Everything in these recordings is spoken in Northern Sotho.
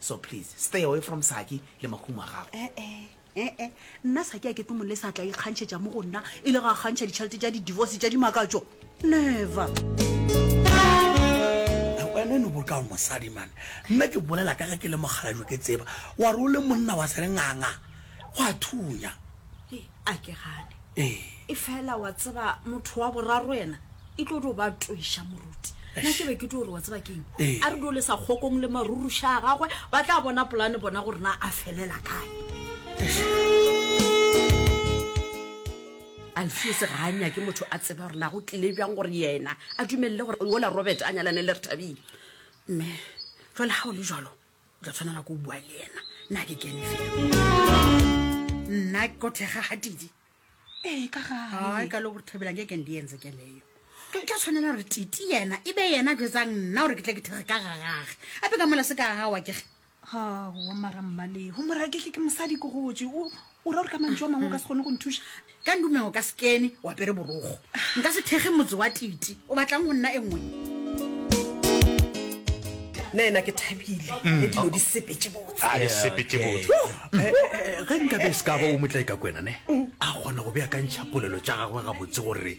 so please stay away from saki le mahumo a gago ee eh, ee eh, eh. nna saki a ke tlo mole sa tla ikgantšhetša mo go nna e le ga kgantšha ditšhelete tša di-divorce tša dimakatso never wena no boka mosadi mane nna ke bolela ka ge ke le mogalajo ke tseba wa re o le monna wa sere nganga go a thunya a ke gane ee e fela wa tseba motho wa boraro yena e tlo tlo ba twiša moruti nna ke be ke tlo gore wa tseba keng Ee. a re dole sa kgokong le maruruša a gagwe ba tla bona polane bona gore na a felela kae alfios ga a nyake motho a tseba gore na go tlile bjang gore yena a dumelele gore ola robert a nyalane le re thabile mme jale ga o le jalo tla tshwanela ko bua le ena nna ke kene fela nna ko thega ga tidi ee ka gae ka le gore thabelang ke kende entse ke leyo ke tla tshwanela gore titi yena e be yena jetsang nna gore ke tla ke thega ka gagage ape ka mola se ka gagawa kege gawa mara mmale go moraketlhe ke mosadi ko gotse o o ra gore ka mantšu a mangwe o ka se kgone go nthuša ka ndumeng o ka se kene o apere borogo nka se thekge motse wa titi o batlang go nna e nngwe nna ena ke thabile mm. le dilo di sepetse botse ah, eh, eh, eh, ge nka be se ka ba o motla e ka kwena ne mm. a kgona go beakantšha polelo tša gagwe gabotse gore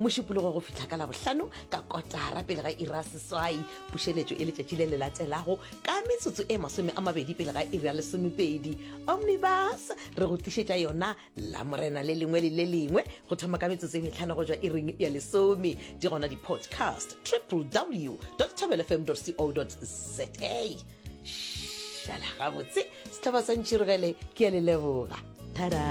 mošupologo go fihla ka labohlano ka kotara pele ga ira seswai pušeletšo e letšatši le le latelago ka metsotso e masome a mabedi pele ga ira lesomepedi omnibus re go tlišetša yona la morena le lengwe le le lengwe go thoma ka metsotso e metlhano go jwa iring ya lesome di gona di-podcast triple w tabelfm co za šala gabotse setlhaba sa ntšhirogele ke ya leleboga tada